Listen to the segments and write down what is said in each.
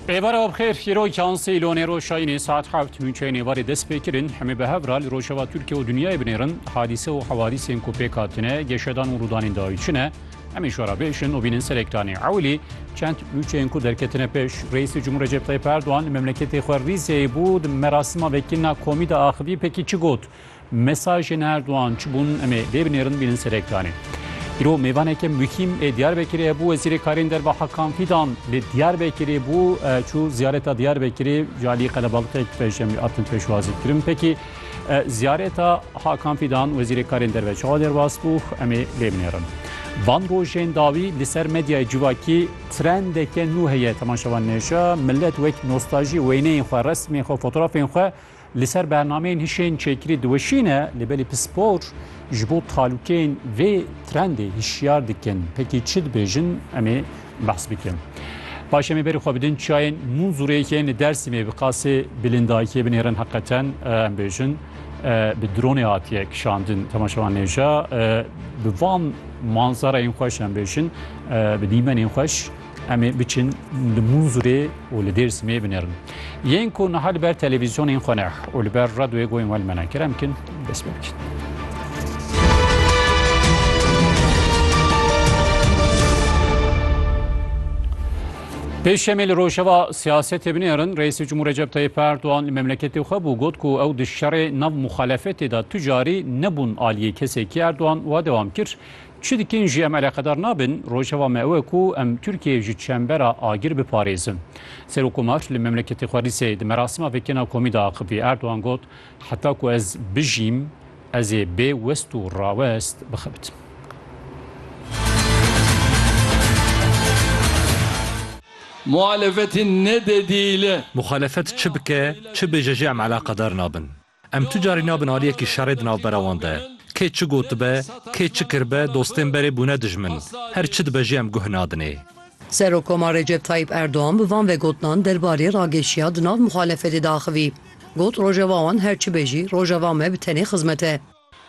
Êvar ew xêr hîro yansê îlonê roşayînê saet heft nûçeyê nêvarê dest pê kirin hemê bi hev ra li rojava Tirkiye û dinyayê binêrin hadîse û hewadîsên ku pêk hatine geşedan û rûdanên dawî çi ne hemê şo ra bêjin û bînin ser ekranê ewilî çend nûçeyên ku derketine pêş Reîsê Cumhur Recep Tayyip Erdogan li memleketê xwe rîzeyê bû di merasima vekirina komî de axivî pekî çi got Mesajên Erdogan çi bûn em ê lê binêrin bînin ser ekranê. Îro mêvaneke muhîm ê Diyarbekirê hebû Wezîrê Karên Derve Hakan Fîdan li Diyarbekirê bû çû ziyareta Diyarbekirê ji aliyê qelebalixek pej em hatin pêşwazîkirin. Pekî ziyareta Hakan Fîdan Wezîrê Karên Derve çawa derbas bû em ê lê binêrin. Van rojên dawî li ser medyayê civakî trendeke nû heye temaşevan nêşa millet wek nostajî wêneyên xwe, resmên xwe, fotoğrafên xwe Li ser bernameyên hişên çêkirî diweşîne, lê belê pispor ji bo talûkeyên vê trendê hişyar dikin. Pekî çi dibêjin em ê behs bikin. Paş em ê berî xwe bidin çiyayên Mûnzûrê yên li Dersîmê bi qasê bilên dayikê binêrin heqeten em bêjin bi dronê hatiye kişandin temaşevan nêja bi van manzareyên xweş em bêjin bi dîmenên xweş Em ê biçin li Mûnzûrê û li Dêrsimê binêrin. Yên ku niha li ber televîzyonên xwe ne û li ber radyoyê goyên we li me ne kerem bikin dest pê bikin. Pêşemê li rojeva siyasetê binêrin Reîsê Cumhur Recep Tayyip Erdoğan li memleketê xwe bû got ku ew di şerê nav muxalefetê de tu carî nebûn aliyê kesekî Erdoğan wa dewam kir Çi dikin jî em eleqedar nabin, rojeva me ew e ku em Tirkiyeyê ji çembera agir biparêzin. Serokkomar li memleketê xwe Rîsê di merasima vekêna komî de axivî. Erdogan got, Heta ku ez bijîm, ez ê bê west û rawest bixebitim. Muhalefetê nededî li. Muhalefet çi bike, çi bêje jî em eleqedar nabin. Em tu carî nabin aliyekî şerê di navbera wan de. Kê çi gotibe, kê çi kiribe dostên berê bûne dijmin. Her çi dibe jî em guh nadinê. Serokkomar Recep Tayyîp Erdogan bi van vegotinan derbarê ragêşiya di nav muxalefetê de axivî. Got, Rojava wan her çi be jî, rojava me bi tenê xizmet e.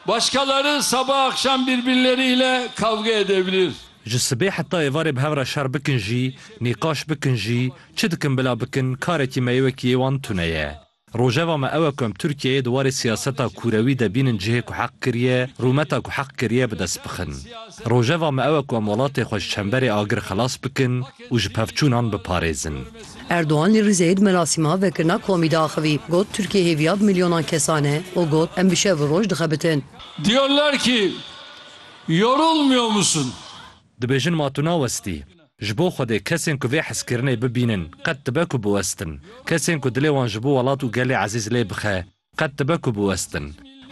Başkaları sabah akşam birbirleri ile kavga edebilir. Ji sibê heta êvarê bi hev re şer bikin jî, nîqaş bikin jî, çi dikin bila bikin, karekî me yê wekî yê wan tune ye. Rojeva me ew e ku em Tirkiyeyê di warê siyaseta kûrewî de bînin cihê ku heq kiriye, rûmeta ku heq kiriye bi dest bixin. Rojeva me ew e ku em welatê xwe ji çemberê agir xelas bikin û ji pevçûnan biparêzin. Erdogan li Rîzeyê di merasîma vekirina komî de axivî, got, Tirkiye hêviya bi milyonan kesan e û got, Em bi şev û roj dixebitin. Diyorlar ki, Yorulmuyor musun? Dibêjin ma tu nawestî. Ji bo Xwedê kesên ku vê hezkirinê bibînin qet dibe ku biwestin. Kesên ku dilê wan ji bo welat û gelê ezîz lê bixe qet dibe ku biwestin.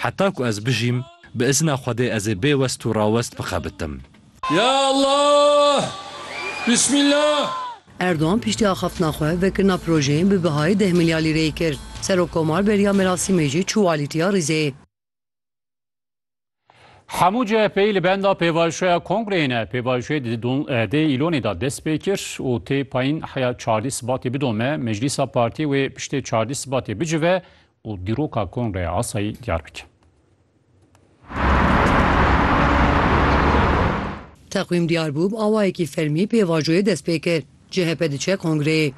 Heta ku ez bijîm bi izna Xwedê ez ê bê west û rawest bixebitim. Ya Allah! Bismillah! Erdogan piştî axaftina xwe vekirina projeyên bi bihayê deh milyar lîreyê kir. Serokkomar beriya merasîmê jî çû alîtiya Rîzeyê. Hemû CHP'yî li benda pêvajoya kongreyê ne. Pêvajoyê di dê îlonê de dest pê kir û tê payîn heya çardî sibatê bidome, meclîsa partiyê wê piştê çardî sibatê bicive û dîroka kongreya asayî diyar bike. Teqwîm diyar bû, bi awayekî fermî pêvajoyê dest pê kir. CHP diçe kongreyê.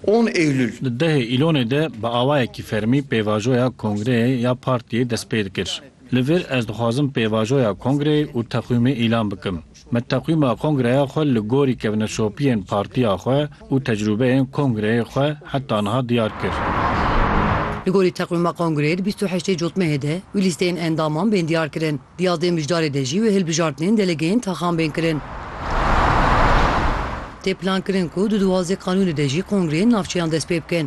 On Eylül. Di dehê Îlonê de bi awayekî fermî pêvajoya kongreyê ya partiyê dest pê dikir. Li vir ez dixwazim pêvajoya kongreyê û teqwîmê îlan bikim. Me teqwîma kongreya xwe li gorî kevneşopiyên partiya xwe û tecrûbeyên kongreyê xwe heta niha diyar kir. Li gorî teqwîma kongreyê di bîst û heştê cotmehê de wî lîsteyên endaman bên diyar kirin. Di yadê mijdarê de jî wê hilbijartinên delegeyên taxan bên kirin. Tê plankirin ku di duwazdeh qanûnê de jî kongreyên navçeyan dest pê bikin.